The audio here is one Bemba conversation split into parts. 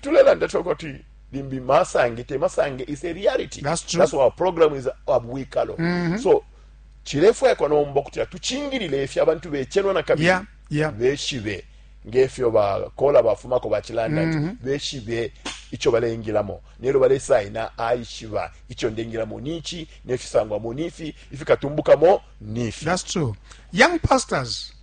Tulelanda fye ukuti limbi masange te masange is a reality. That's true. That's why our program is abwikalo. Mm -hmm. So chilefwe kwa nombo kuti atuchingilile ifya abantu bechenwa na kabili. Yeah, yeah. Beshibe ngefyo ba kola bafuma ko bachilanda mm -hmm. beshibe icho balengilamo nero bale saina aishiba icho ndengilamo nichi nefisangwa munifi ifikatumbuka mo nifi. That's true. Young pastors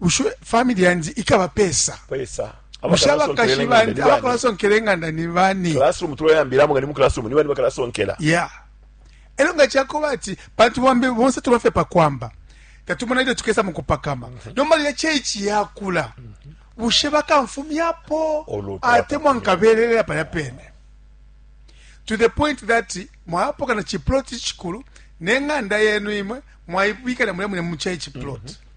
bushe famili yandi ikaba pesa pesa bushe abakashi bandi abakalasonkela enganda ni bani classroom tuloyambilamo nga ni mu classroom ni bani bakalasonkela yeah elo nga chakoba ati pantu bambe bonse tubafe pa kwamba tatumona ile tukesa mu kupakama mm -hmm. nomba ile church yakula mm -hmm. bushe bakamfumyapo ate mwankabelelela palya pene to the point that mwapoka na chiploti chikulu neng'anda yenu imwe mwaibikana mulya mune muchai chiploti mm -hmm.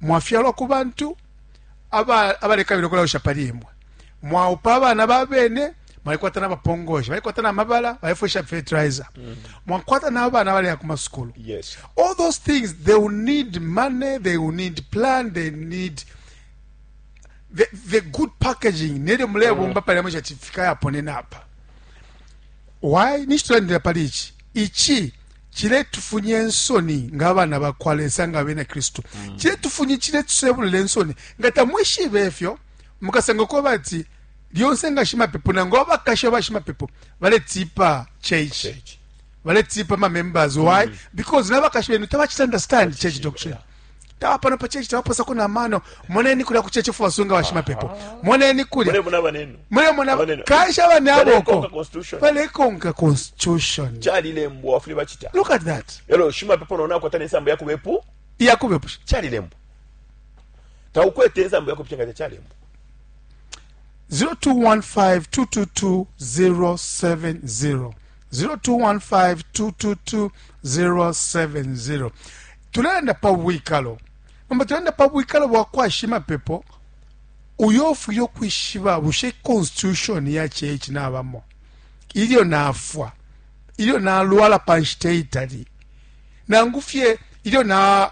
Mwafyalwa ku bantu aba abalekabila ukulawisha pali imwe. Mwaupa abana ba bene, mwalikwata na bapongoshi, balikwata na mabala, balifwesha fertilizer. Mm. Mwakwata na abana baleya ku masukulu. Yes. All those things they will need money, they will need plan, they need the, the good packaging nelyo mulebomba mm. palya mwisha tifika yaponena apa. Why? Nishitulandira pali ichi. Ichi ciletufunye nsoni nga abana ba kwa lesa nga abena kristu mm. ciletufunye ciletusebulula ensoni nga tamwishibe efyo mukasanga kuba ati lyonse nga shimapepo nangu abakashi abashimapepo baletipa church baletipa mamembers why mm. because nabakashi benu tabacita understand church doctrine yeah. tawa pano pa chechi tawaposako na mano moneni kulya ku chechi fubasunga bashimapepo moneni kulya mulemona kanshi abana aboko balekonka constitution chalilembwa wafuli bachita look at that elo shimapepo naona akwata nesambo yakubepu yakubepusha chalilembwa taukwete ensambo yakupusha nga chalilembwa 0215222070 0215222070 Tulelanda pa bwikalo. Nomba tulelanda pa bwikalo bwa kwa shimapepo uyo ufwile ukwishiba bushe constitution ya chechi nabamo ilyo nafwa ilyo nalwala pa nshita itali nangu fye ilyo na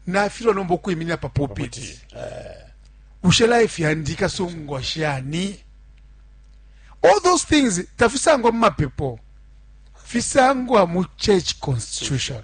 nafilwa nomba ukwiminira pa pulpit eh. bushe life yandi ikasungwa shani all those things tafisangwa mu mapepo fisangwa mu church constitution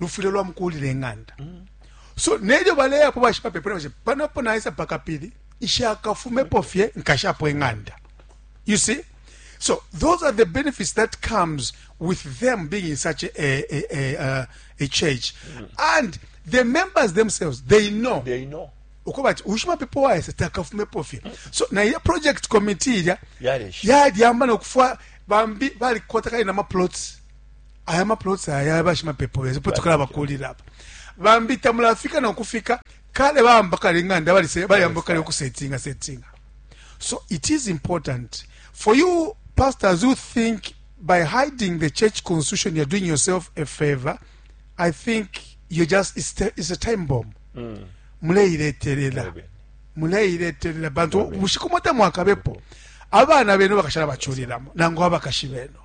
lufwile lwamukuulila ing'anda so nelyo baleyapo bashimapepo ne bashe panapo naisa pa kapili nshakafumepo fye nkashapo ing'anda you see so those are the benefits that comes with them being in such a, a, a, a, uh, a church mm. and the members themselves they know, they know. uko bati ushimapepo waese takafumepo fye so na ile project committee ilya yalyamba nokufwa bambi balikota kali na maplots aya maploti aya ya bashimapepo besu po tukalabakulila apa bambi tamulafika nokufika kale bamba kale ing'anda bayamba kale ukusetinga setinga so it is important for you pastors who think by hiding the church constitution you're doing yourself a favor i think you just it's, it's a time bomb mm. muleiletelela muleiletelela bantu bushiku mwata mwakabepo abana benu bakashala baculilamo nangu abakashi benu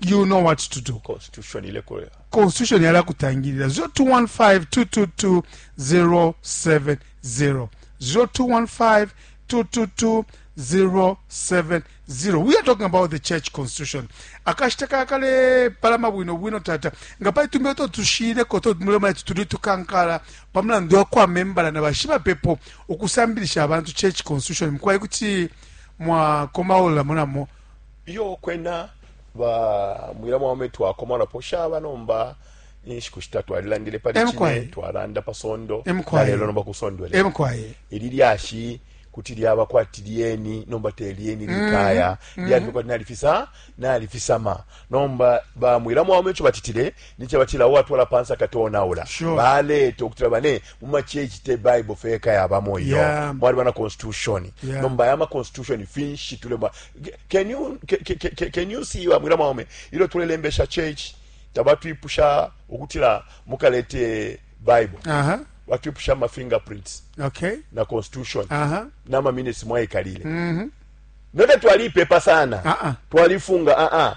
you know what to do constitution ile ko constitution yala kutangirira 0215222070 0215222070 we are talking about the church constitution akashita kakale palama bwino bwino tata nga pali tumbe to tushire ko to mulema yetu tuli tukankala pamulandu wa kwa membala na bashiba pepo ukusambilisha abantu church constitution mukwaye kuti mwakomaula munamo iyo kwena ba mwila mwaume twakomanapo shaba nomba inshiku shitatu twalilandile pali Emkwaye. chine twalanda pa sondo Emkwaye. lelo nomba kusondwele emkwaye ili lyashi kuti lyaba kwati lyeni nomba te lyeni likaya lyalibe kwati nalifisa nalifisama nomba bamwila mwaume ico batitile nicaba cila uwatwala pansa katonaula sure. baleta ukutila bane mumachechi te bible feka yabamo iyo yeah. mwali bana constitution yeah. nomba yama constitution finshi tulema can you, can, can you see bamwila mwaume ilo tulelembesha church tabatwipusha ukutila mukalete bible uh -huh. batwipusha ma fingerprints okay. na constitution uh -huh. nama minutes mwaikalile mm -hmm. note twaliipepa sana uh -uh. twalifunga uh -uh.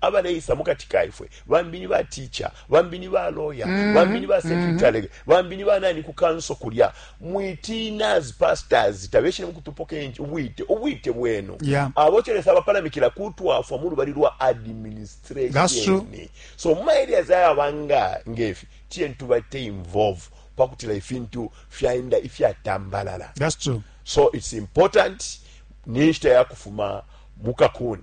abaleisa mu kati ka ifwe, bambi ni ba teacher, bambi ni ba lawyer, mm-hmm. bambi ni ba mm-hmm. secretary, mm -hmm. bambi ni banani ku kanso kulya. Mwitina as pastors tabeshine mu kutupoka enji ubwite ubwite bwenu. Yeah. Abochele saba pala mikila kutwafwa mu lubali lwa administration. That's true. So mu areas aya banga ngefi tien tubate involve pakutila ifintu fyaenda ifyatambalala. That's true. So it's important ninshita ya kufuma mukakuni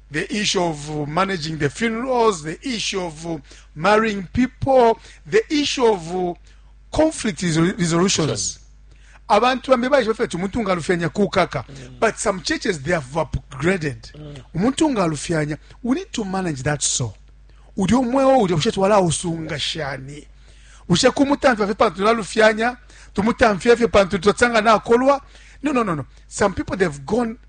the issue of managing the funerals, the issue of marrying people, the issue of conflict resolutions. abantu bambi baishiba fye ti umuntu ngaalufyanya kukaka mm. but some churches they have upgraded mm. umuntu ngaalufyanya we need to manage that so uli omweo ulya bushe twalausunga shani bushe kumutamfya fye pantu tulalufyanya tumutamfya fye pantu tutsanga nakolwa no no no no some people they've gone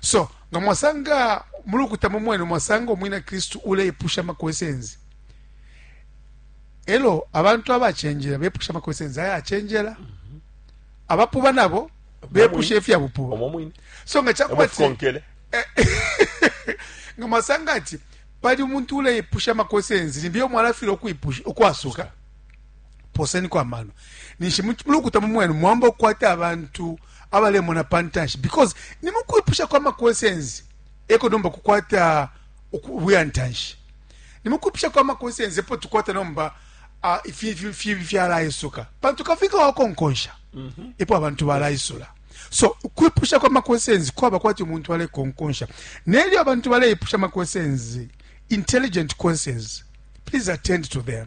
so nga mwasanga mu lukuta mu mwenu mwasanga umwina kristu uleipusha amakwesenzi elo abantu abachenjera bepusha amakwesenzi aya achenjera abapuba nabo bepusha ifyabupuba so nga chakuba ti nga mwasanga ati pali umuntu uleipusha amakwesenzi nimbiyo mwalafira ukwasuka poseniko amano ninshi mulukuta mumwenu mwamba okukwata abantu abalemona pantanshi because ni mukwipusha kwa maquestions eko nomba kukwata ubuya ntanshi ni mukwipusha kwa maquestions epo tukwata nomba uh, ifibi fyalaisuka pantu kafika wakonkonsha mm -hmm. epo abantu balaisula so ukwipusha kwa maquestions kwaba kwati umuntu alekonkonsha nelyo abantu baleipusha maquestions intelligent questions please attend to them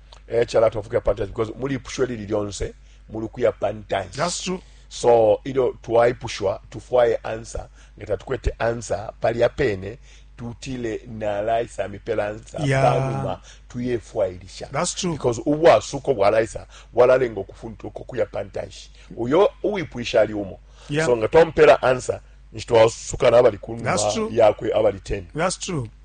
eh chala tofuka pantas because muli pusho lili lyonse muli kuya pantas that's true so ilyo twaipushwa tufwaye ansa nga tatukwete ansa pali apene tutile nalaisa mipela ansa yeah. panuma tuyefwailisha that's true because ubwasuko bwalaisa bwalalenga okufunta uko kuya pantashi uyo uwipwisha ali umo yeah. so nga twampela ansa nshitwasuka nabali kunuma yakwe abali 10 that's true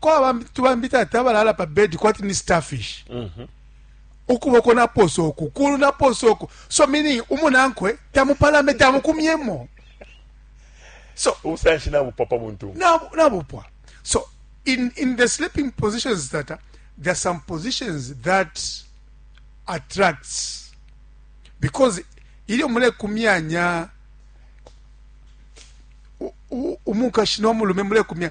kwaba bambi tubambi tata balala pa bed kwati ni starfish mm -hmm. ukuboko naposa oku kulu naposa oku so meaning umunankwe tamupalame tamukumyemo so ubusanshi nabupwa pa muntu nabupwa so in, in the sleeping positions tata uh, there are some positions that attracts because ilyo mule kumyanya umukashi no mulume mule kumya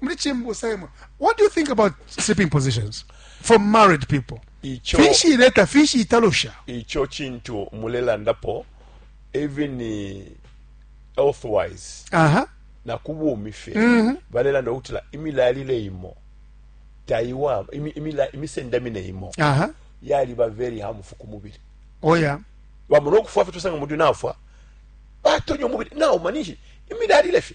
muli chimbusa imwe what do you think about sleeping positions for married people icho fishi ileta fishi italusha icho chintu mulelandapo even eh, health wise aha na kubumi fe mm -hmm. balelanda ukutila imilalile imo taiwa imi, imila, imisendamine imo aha yali ba very harmful ku mubili oya bamona okufwa fe tusanga mundu nafwa batonyo mubili nawo manishi imilalile fe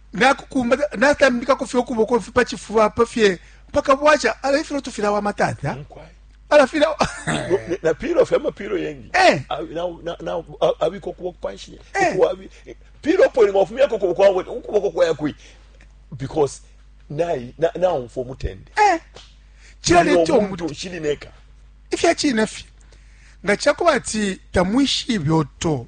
nakukumba natambikako fye ukuboko mfi pa cifuba apa fye mpaka bwaca ala ifilo tufilawama tata ala fila na pilo fye amapilo yengi eh. abika ukuboko panshi eh. pilo po ni mwafumiyako ukuboko wawe ukuboko kwaya kwi because nayi naumfa omutende eh. kiraleeta omuntu kirineka ifyakirina fye nga kyakuba ati tamwishiibyoto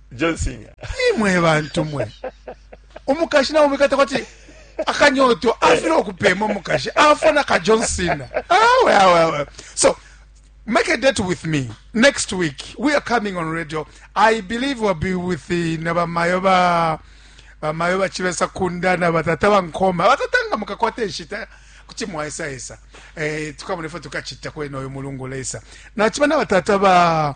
John Cena. imwe bantu mwe umukashi nawe umwikata kwati akanyoto afuna okupema umukashi afuna ka john cena awe awe awe so make a date with me next week we are coming on radio i believe we'll be with the nabamayo ba bamayo bachivesa kunda na batata bankoma batata nga mukakwata enshita kuti mwaesayesa eh, tukamona ifo tukachita kwena oyo mulungu lesa nachiba na batata ba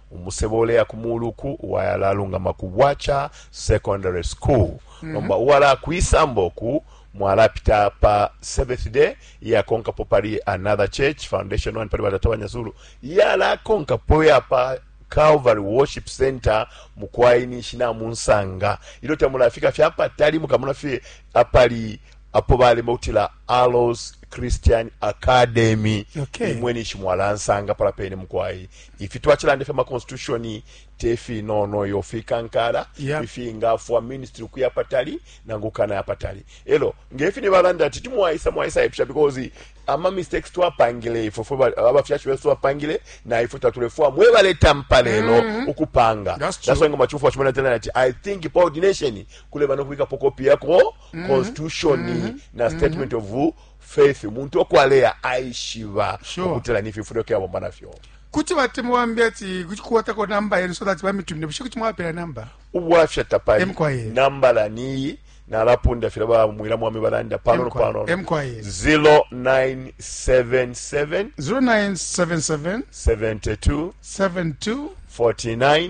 Umusebo uleya ku muulu uku wayalalungama ku Bwacha Secondary School, mm -hmm. nomba uwala kwisamba uku mwalapita pa Seventh Day iyakonkapo pali Another Church Foundation one pali batata banyazulu yalakonkapo yapa Calvary Worship Center mukwai ninshi namunsanga ilyo tamulafika fye apatali mukamona fye apali apo balima kutila Aloes Christian Academy okay. imwe nishi mwalansanga pala pene mukwai ifi twachilande fya ma constitution tefi no no yo fikankala yep. ifi ngafwa ministry kuya patali nangu kana ya patali elo ngefi ni balanda ati timwaisa mwaisa epsha because ama mistakes twapangile ifo fo abafyashi besu twapangile na ifo tatulefua mwe baleta mpalelo mm -hmm. ukupanga that's, that's why ngoma chufu wachimana tena ati i think coordination kule bano kuika pokopi yako mm-hmm. constitution mm -hmm. na mm-hmm. statement mm -hmm. of faith umuntu okwaleya aishiba sure. ukutila nififulo kyabomba nafyo kuti batemu bambi ati kuti kuwatako namba yenu so that bamitumine bushe kuti mwapela namba ubwafya tapali nambala niyi nalapunda fila bamwila mwami balanda panono panono 0977 0977 72 72 49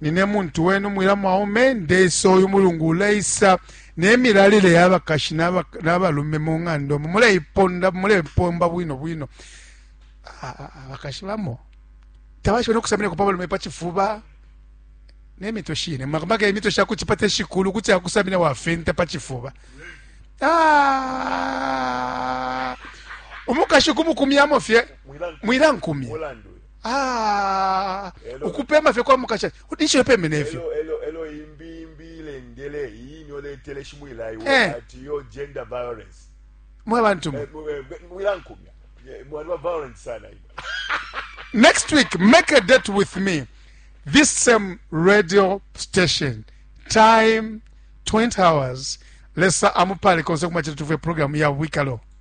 Nine muntu wenu mwila mwaume, ndeisa uyu mulungu uleisa ne milalile ya bakashi na balume mu ng'anda omo muleiponda mulepomba bwino bwino abakashi bamo tabashibe no kusaminako pa balume pa cifuba ne mitwe shine makamaka imitwe sha kucipata shikulu kuti akusamina wafenta pa cifuba umukashi kumukumyamo fye mwilankumya Ah, ukupema fye kwa mukashana ninshi yopemene ifyo eh. mwe bantu mwe eh, eh, next week make a date with me this same radio station time 20 hours lesa amupale konse kumachita tuve program ya wikalo